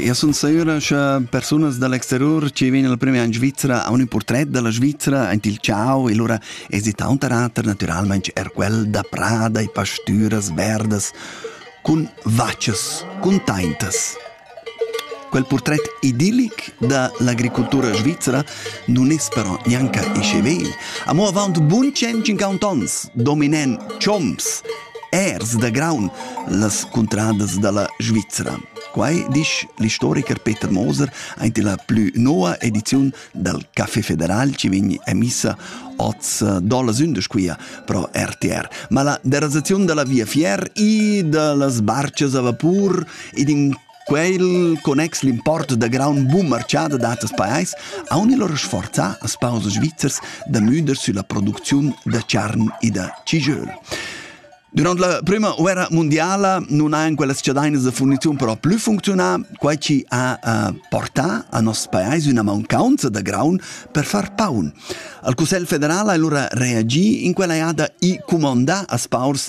Eu sun sura cha persunas da l'exteriur chi vegnan il primer in Svizra a un portret da la Svizra aint il ciao e lura es taunt rater natüralmaing er quel da prada e pastüras verdas cun vachas, cun taintas. Quel portret idillic da l'agricultura svizra nun es però gnanca isce vegl. Amo avaunt bun 150 ons dominan chomps Ers da graun las cuntradas dalla Svizra. Quai disch l'istoricher Peter Moser aint la plü noa ediziun dal Café Federal chi vegn emissa oz dolas undas quia pro RTR. Ma la derasaziun da la Via Fier i da las barchas a vapur ed in Quel connex l'import da graun bumarchà da datas pajais haun il lur sforzà as pausas svizzers da müder sülla producziun da charn e da cijöl. Durant la prüma uerra mundiala nun hajan quellas chadainas da furniziun però plü funcziunà, quai chi ha uh, portà a nos pajais üna mancaunza da graun per far paun. Al Cussel federal ha lura reagi in quella jada i cumandà as paurs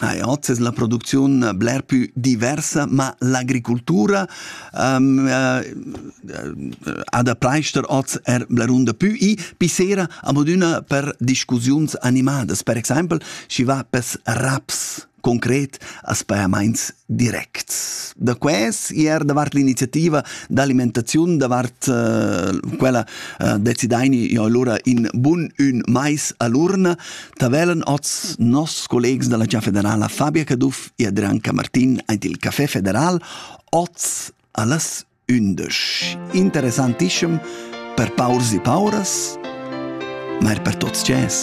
Ah, ja, oz es la producziun bler pü diversa, ma l'agricultura um, uh, ha da preister oz er blerunda pü i pissera amodüna per discussiuns animadas. Per exaimpel, schi va pes raps concret als pajamaints directs. Da ques er davart l'iniziativa d'alimentaziun, davart uh, quella uh, decidaini jo allora in bun ün mais a l'urna, Da velen oz nos collegs dalla Gia federala Fabia Caduff e Adrian Camartin ant il Café Federal oz allas undisch. Interessantischem per paurs e pauras, ma er per tots cies.